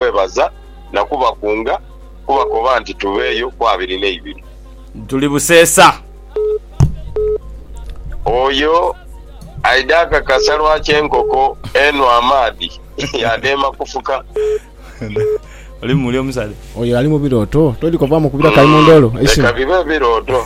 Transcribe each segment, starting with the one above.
kwebaza na kubakunga kubakoba nti tubeeyo ku abiri n'eibiri. Tuli buseesa. Oyo aidha akakasa lwaki enkoko enhwa amaadhi yaadheema kufuka. Oli mu muli omusale. Oyo ali mu birooto. Todhi kovaamu kubira kayi mu ndoolo. Eisimu. Leka bibe birooto.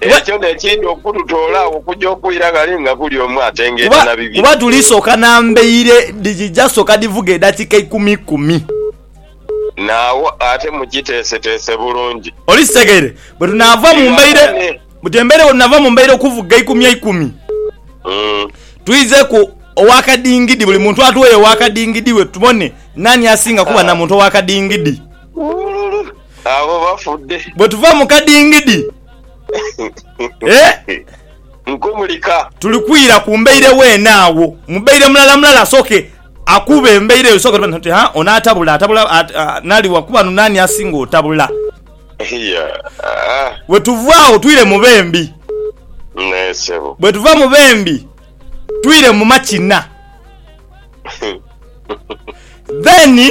Ekyo n'ekindi okututoola agho okuja okwira ghale nga buli omu atengeeta na bibye. Kuba tuli soka namba eire dhija soka dhivuge edakika ikumi ikumi. Naagho ate mukiteeseteese bulungi. Oli kitegeire? Bwe tunaava mu mbaire, mutembereire, bwe tunaava mu mbaire okuvuga ikumi ikumi, twizeku owa kadingidi, buli muntu atugheyo owa kadingidi we tubone naani asinga kuba na muntu owa kadingidi. Abo bafudde. Bwe tuva mu kadingidi, eh? Nkumulika. Tuli kwira ku mbaire weene agho. Mubaire mulala mulala asooke akube embaire eyo sooka nti, Ha, ono atabula, atabula, ata, nali wa kuba nu naani asinga otabula. Iya, ah. Bwe tuva agho twire mu b'embi. Naye ssebo. Bwe tuva mu b'embi twire mu makina. Then.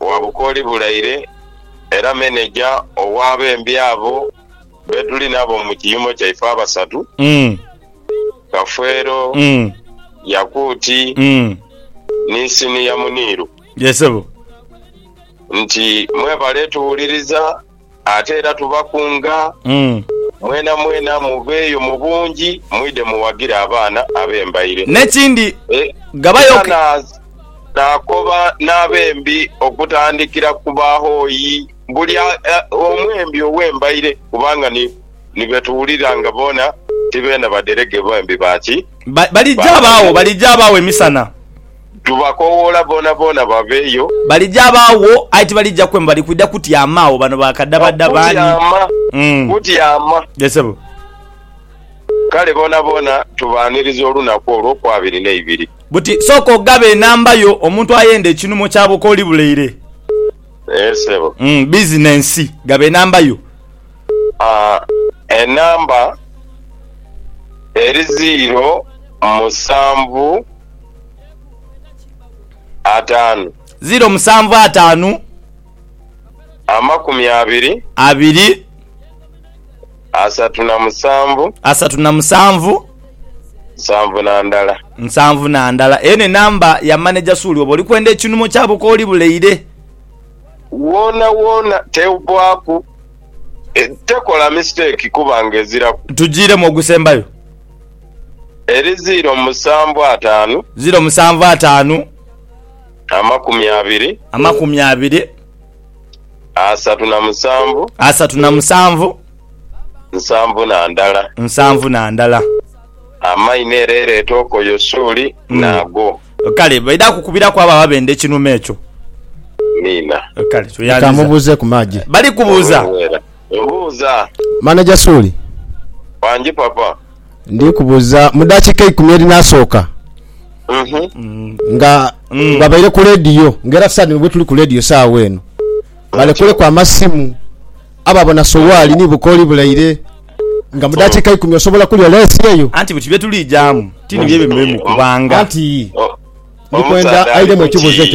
wa Bukooli Bulaire era Meneja ow'abembi abo be tuli nabo mu kiyumba kyaife abasatu, Kafeero, Yakuuti ni Siniya Muniiru nti, Mwebale tuwuliriza. Ate era tubakunga mwenamwena muveeyo mu bungi mwidhe muwagire abaana abembaire. N'ekindi, ghabayo. Era naakoba n'abembi okutandikira ku bahoyi, buli omwembi ow'embaire, kubanga ni be tuwulira nga boona ti beena badherege, bembi ba ki? Baligya baagho, baligya baagho emisana. Tubakoowoola boonaboona baveeyo. Balija baagho, aye tibalija kwemba, bali kwidha kutyama agho. Bano ba kadhabadha b'ani? Kutyama, kutyama. Yee, ssebo. Kale boonaboona tubaaniriza olunaku olw'okwabiri n'eibiri. Buti sooka ogabe enamba yo, omuntu ayenda ekinhumo ky'abo k'oli buleire. Yee, ssebo. Bizinensi. Gaba enamba yo. Haa, enamba eri ziiro musanvu. ataanu. Ziro musanvu ataanu. Amakumi abiri. Abiri. Asatu na musanvu. Asatu na musanvu. Nsanvu na ndala. Nsanvu na ndala. Eyo n'enamba ya maneja Suuli. Oba oli kwenda ekinumo kya bukooli buleire. Woonawoona tewbaaku, tekola misiteeki kuba ng'eziraku. Tujiiremu ogusembayo. Eri ziiro musanvu ataanu. Ziiro musanvu ataanu. Amakumi abiri. Amakumi abiri. Asatu na musanvu. Asatu na musanvu. Nsanvu na ndala. Nsanvu na ndala. Amaino era ereeta okoyo suuli hmm. naago. Kale baidha kukubiraku abo ababenda ekinuma ekyo. Miina. Kale tuyandiza. Kamubuuze ku maagi. Bali kubuuza. Buuza. Manager Suuli. Wangi papa. Ndi kubuuza mu dakiika eikumi erinasooka nga babaire ku leediyo nga era saadi nibwe tuli ku leediyo saawa eno balekuleku amasimu abo abona sowaali ni bukooli bulaire nga mu dakiika ikumi osobola kulya leesi eyo. Anti biki byetulijamu tini byebyo bimuli mu kubanga. Anti ndikwenda aidemu ekibuuzo ekyo.